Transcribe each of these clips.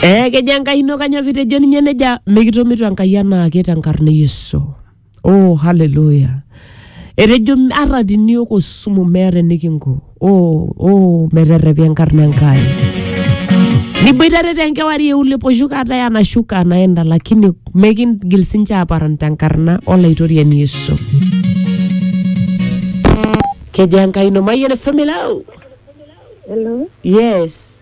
Eh, kejo enkai ino kanyoo pitejo ninye neja mikitomito enkai anaake tenkarna e yesu oh haleluya etejo ata tiniok osumu meeta enikinko oh, oh, meterrepi enkarna enkai niboitare tenkewarie uliposhuka hata yanashuka anaenda lakini mekingil sinche aparan tenkarna olaitoriani yesu kejo enkai ino mayian efemilau Hello. yes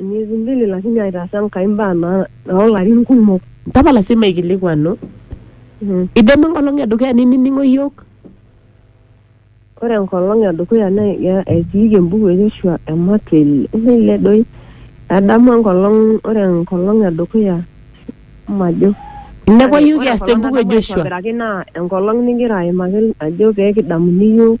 Miezi mbili lakini aitaasa Enkai mbaa naa oolarin kumok. Tapala sii maikilikuanu. Mhm. Idamu enkolong e dukuya ninining'o iyiook? Ore enkolong e dukuya naa ya- etiiki embuku e Yoshua ematua ele ele doi. Adamu enkolong ore enkolong e dukuya majo. Inepu iyiook Ore kiasita enkolong embuku e nadamu Joshua? aitobiraki naa enkolong nigira aimaki ajo pee kidamuni iyiook.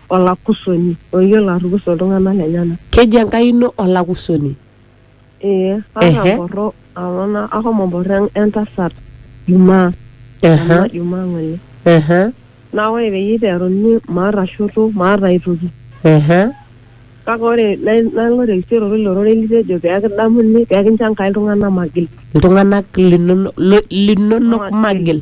olakusoni oyiolo atukusa iltung'anak lenyena. Keji Enkai ino olakusoni? Ee, atamborro amu ashomo mborro entasat jumaa, ena jumaa ng'ole. Naa ore peyie iteruni maata shoto, maata ai toki. Kake ore nalo terisioroto ilo rorei litejo pee kidamuni, pee kincho Enkai iltung'anak magil. Iltung'anak linonok magil.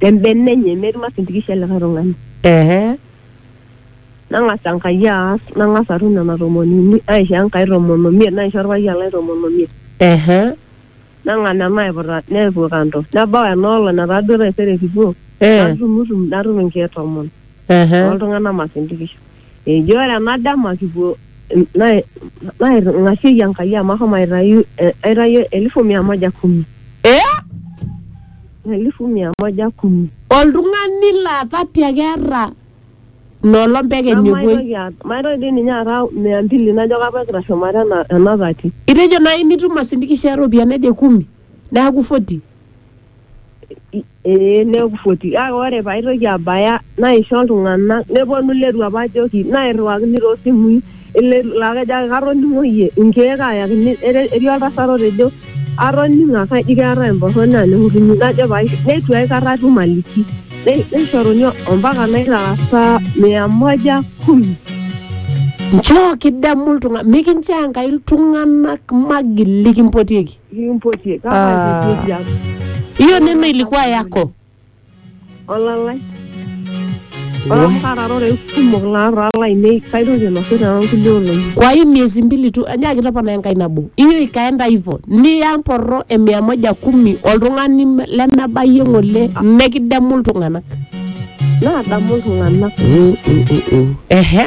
te mbene enye metii masintikisho e likae tung'ani. Ehe. Nang'as Enkai aas, nang'as atum nena tomoni uni, naisho Enkai tomon omiet, naisho olpayian lai tomon omiet. Ehe. Nang'as nena aiputa nepuo kando. Nebau ena olong' netaa duo taisere kipuo, Eh. natumutum natum inkeek tomon. Ehe. oltung'anak masindikisho eji ore ena dama kipuo nai- nairng'asieki Enkai amu ahomo aitayu eh, aitayu elfu mia moja kumi Eh? elfu mia moja kumi Oltung'ani laa thati ake eeta nolom pekeny Nanu epuoi. maitoki aata- maitoki dii ninye aata mia mbili najo kapa egira shumata ena- ena thati Itejo nai nitum masindikisho eropiyiani naje kumi neaku 40. ee nekufuati kake ore paitoki abaya naisho iltung'anak neponu iletu apa ajoki nairriwakini toosimui iletu laa kejo ake katoning'o iyie inkeek ayakini ere- etii oltasat otejo atoning'o ake aji keetae emborroni aning'utunyi najo pae neitu aikata atum aliki Nei- neishoruni ompaka naitaasa mia moja kumi nchoo kidemu iltung'anak mikinchoo enkai iltung'anak magil likimpotieki Nikimpotie. Kama Ah. aipotie tiang. hiyo neno ilikuwa yako Olalai. Ore amu katarore kumok naara lainei kaitoki ainosu too nkulie olong'i. kwa hii miezi mbili tu anyaki topona enkai nabo hiyo ikaenda hivyo niya mporro e mia moja kumi oltung'ani me- lemebayie ng'ole mekidemu iltung'anak Naadamu iltung'anak. ehe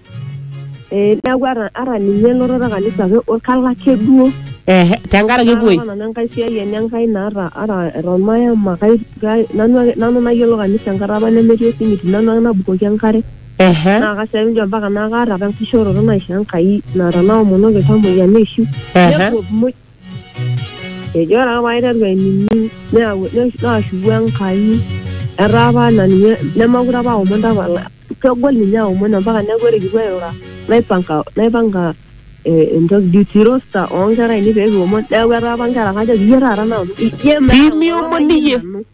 Eh, neeku ata ata ninye elototo kanisa ake o- kalo ake duo Ehe, tenkaraki epuoi Kalo nanu enkai siai enye enkai naata ata eton mayama kai kai- nanu ake nanu nayiolo kanisa enkata apa nemetii osimiti nanu ake nabukoki enkare Ehe, naa kasiai njo mpaka naa kaata apa enkishooroto naisho enkai naa tanaomonoki iltamoyia neishiu Ehe. nepuo muj Ejo ore ake paiteru ainining neyau naashuku Enkai etaa apa anaa ninye nemeekure apa aomon tapala kegol ninye aomon ampaka neeku ore kipuo airura naipanga naipanga eh, entoki duty roster oonkera ainei pekiomon neeku etaa apa inkera kajoki iyie taata naomon iyie metaa Pimiomon iyie. nanu."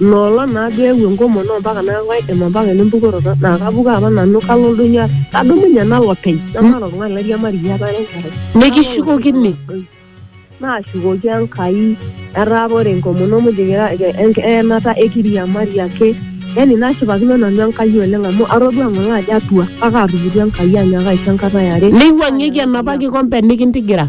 Nolon naa duo eewuo enkomono ompaka naaku kaidim ompaka ene mpukoroto naa kapuku apa nanu kalo oldoinyio aas kadumunye nalo openy namaata oltung'ani lairiamariyie apa ara enkerai. Nikishukokini. Naashukoki Enkai etaa apa ore enkomono muj kira enk- eenata ekiriamari ake yani nashipakino nanu Enkai oleng amu atodua ng'ole ajo atua kake atupukuo Enkai anyaaka aisho enkata eare. Neiwuang'ieki enapa kikompe nikintigira.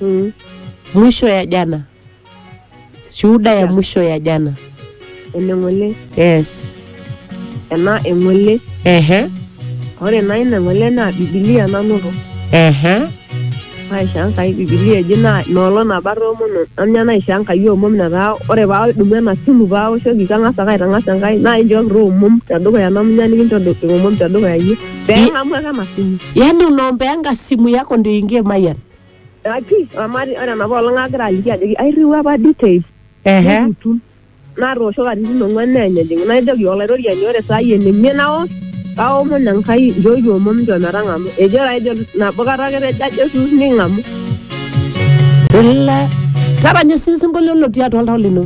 Mm. mwisho ya jana shuhuda ya mwisho ya jana Ene ng'ole. yes Ena eng'ole. ehe Ore naa ina ng'ole naa Bibilia nanoto. ehe Naisho Enkai Bibilia eji naa inoolong nabo atoomono anya naisho Enkai omom netaa ore paadumu ena simu paawoshoki kang'as ake aitang'as Enkai naa inchooki taa omom tedukuya namunya nikinchoo omom tedukuya iyie. Pema mwaka masimu. yaani unaombeanga simu yako ndio ingie mayan Aki, amari ore nabo olong agira aliki ajoki airriwua apa details. ehe Neputu. Natoosho katitin ong'uan neenyejing. Najoki olaitoriani ore saa hii enimie naos kaomon Enkai nchooki omom nchoo metang'amu. Ejo taa ejo nabo kata ake etejo ajo esuus ning'amu. Ila- taranya osinkolio lotii atua oltau lino